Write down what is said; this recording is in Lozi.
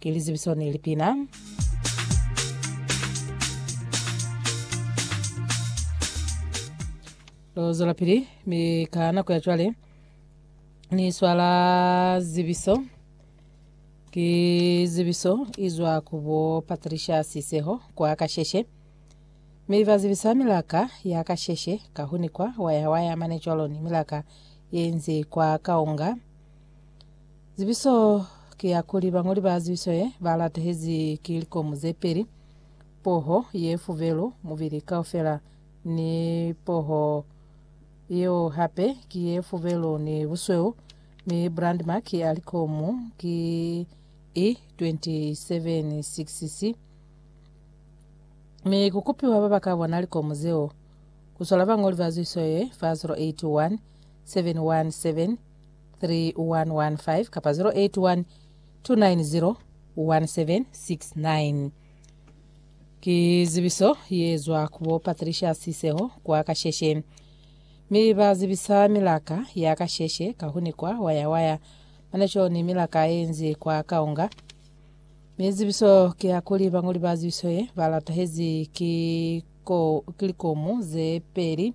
Ki lizibiso ni lipina. Lo zwelapili mi ka nako ya cwale ni swala zibiso ki zibiso izwa ku bo Patricia Siseho kwa Kasheshe mi ba zibisa milaka ya Kasheshe ka huni kwa waya waya mane cwalo ni milaka yenzi kwa Kaonga Zibiso ki ya kuli bañoli ba zibiso ye ba latehezi ki likomu ze peli, poho ye fubelu mubili kaufela ni poho yeo hape ki ye fubelu ni busweu, mi brandmark ya likomu ki E276C. Mi ku kupiwa ba ba ka bona likomu zeo ku sola bañoli ba zibiso ye fa 081 717 3115 kapa 081 2901769 ki zibiso ye zwa ku bo Patricia Siseho kwa Kasheshe mi ba zibisa milaka ya Kasheshe kahuni kwa wayawaya mane co ni milaka ye nzi kwa Kaonga mi zibiso ki ya kuli bangoli ba zibiso ye ba latahezi ki ko ki likomu ze peli